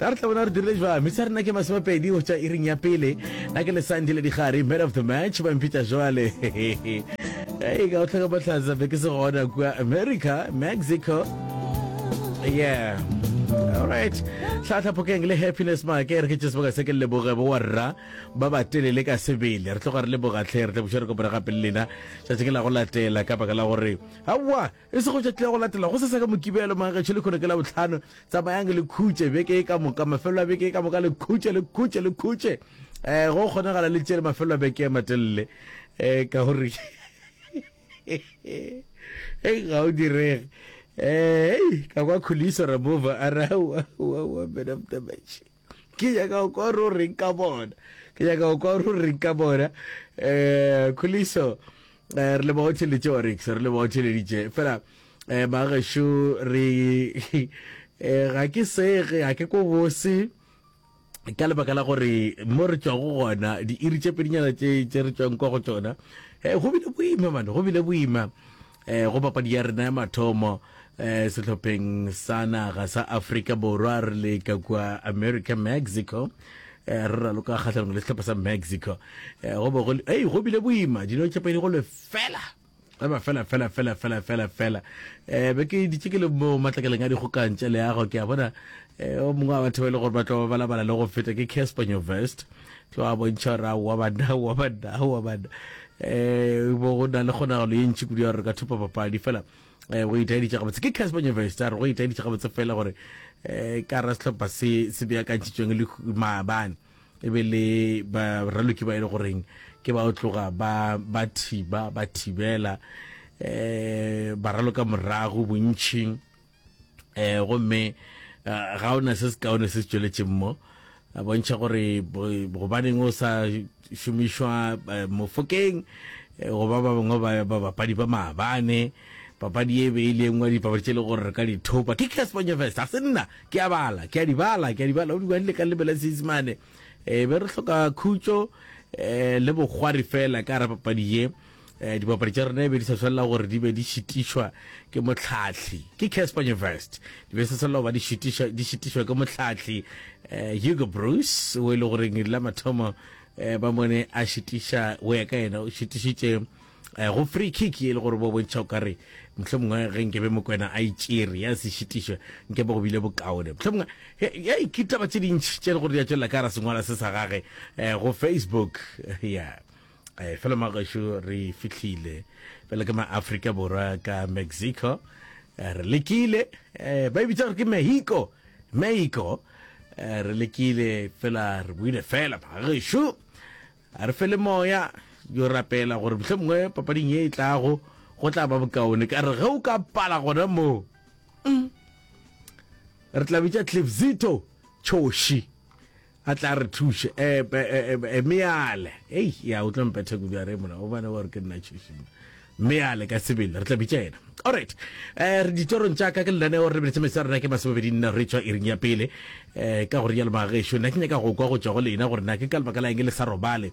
Na re tla bona re dirile jwang? Misa rena ke masomepedi go tšwa iring ya pele. Na ke lesandi le digare, man of the match, ba mpitša jwale. Hey, ka go tlhoka bohlatsa be ke se gona kua America, Mexico. Yeah. Alright. Tlhatlha Phokeng le Happiness Make re ke tše sebaka se ke leboge bo warra ba ba telele ka sebele. Re tloga re leboga tlhe re tla buša re kopana gape le lena tšatši ke la go latela ka baka la gore aowa E sego tšatši la go latela go seseka Mokibelo, Manggetšho le kgono ke Labohlano. Tsamayang le khutše beke e ka moka, mafelelo a beke e ka moka, le khutše, le khutše, le khutše. Eh, go kgonagala le tšele mafelelo a beke a matelele. Eh, ka gore e ga o direge. Eh, ka kwa Khuliso Ramova a ra wa wa wa man of the match. ke nyaka go kwa ro reng ka bona ke nyaka go kwa ro reng ka bona um kholiso eh, re le bao theleditše orex re le bao theleditše fela eh bagesho re eh ga ke sege ga ke ko bose ka lebaka la gore mo re tswago gona diiri tše pedinyana tše tše re tswang kwa go tsona eh go bile boima mane go bile boima E, go papadi ya rena ya mathomo e, sehlopheng sa naga sa afrika borwa re le ka kua america mexico e, re raloka kgatlhanong le sehlopha sa mexico e, go be go le- ei go bile boima dilo tša pedi go le fela eba fela fela fela fela fela fela um be ke ditše ke le mo matlakeleng a dikgokang tša leago ke a bona um o mongwe wa batho ba e le gore ba tlo balabala le go feta ke casper nyovest tlo a bontšha gore aowa banna aowa banna aowa banna um bo go na le kgonagalo ye ntši kudu ya gore re ka thopa papadi fela um go itaeditša gabotse ke casper nyevest a re go itaeditša gabotse fela gore um ka ra sehlopha se se beakantšhitsweng le maabane e be le baraloki ba e le goreng ke ba o tloga ba ba thiba ba thibela um baraloka morago bontšhing um gomme eh, ga o na se se kaone se se tšweletšeng mo a bontšha gore bo- gobaneng o sa šomišwa eh, mofokeng eh, goba ba bangwe ba ba bapadi ba maabane papadi e be e le engwe ya dipapadi tše e le gore re ka di thopa ke cas bonyo fest ga se nna ke a bala ke a di bala ke a di bala o di badile ka lebela seesemane um be re hloka khutšo um le bokgwari fela ka ra papadi ye Eh, dibapadi tša rena e be di sa swalela gore di be di šitišwa ke motlhatlhi ke casper nyevest di be di sa swalela go ba di šitišwa- di šitišwa ke motlhatlhi um hugo bruce o e le goreng ledi la mathomo um ba mone a šitiša o ya ka yena o šitišitše um go free kick e le gore bo bontšha o ka re motlho mongwe ge nke be mokwena a itšere ya se šitišwe nke be go bile bokaone motlho mongwe ya- ya ikitaba tse dintšhi tše e le gore di a tšwelela ka ra sengwala se sa gage um go facebook ya eh fela magesho re fihlile fela ke ma Africa borwa ka Mexico eh, re lekile eh ba e bitsa gore ke Mexico Mexico eh, re lekile fela re buile fela magesho a re fele moya yo rapela gore motlhe mongwe papading e e tlago go tla ba bokaone ka re ge o ka pala gona moo mm. re tla bitsa clipzito choshi A tla re thuše. E, e, e, e, e meale. Ei, ya, o tlo mpetha kudu a re mola, o bane wa re ke nna tšhošina. Meale ka sebele, re tla bitša yena. All right. Eh, re ditorong tša ka ke lenaneo re lebeletse metse ya rona ke masomebedi nna re tswa iring ya pele. Eh, ka go rialo magaešo, nna ke nyaka go kwa go tšwa go lena gore na ke ka lebaka la eng le sa robale.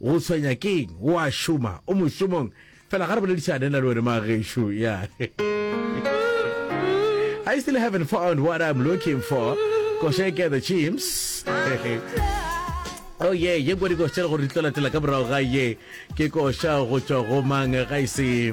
O tshwenya ke'ng? O a šoma? O mošomong? Fela ga re boledišane nna le wena mma gešo. Ya. I still haven't found what I'm looking for. Kosheke the Chimps. Oh ye, ye kwa dikoša gore di tlo latela ka morago ga ye. Ke koša go tšwa go mang ga e se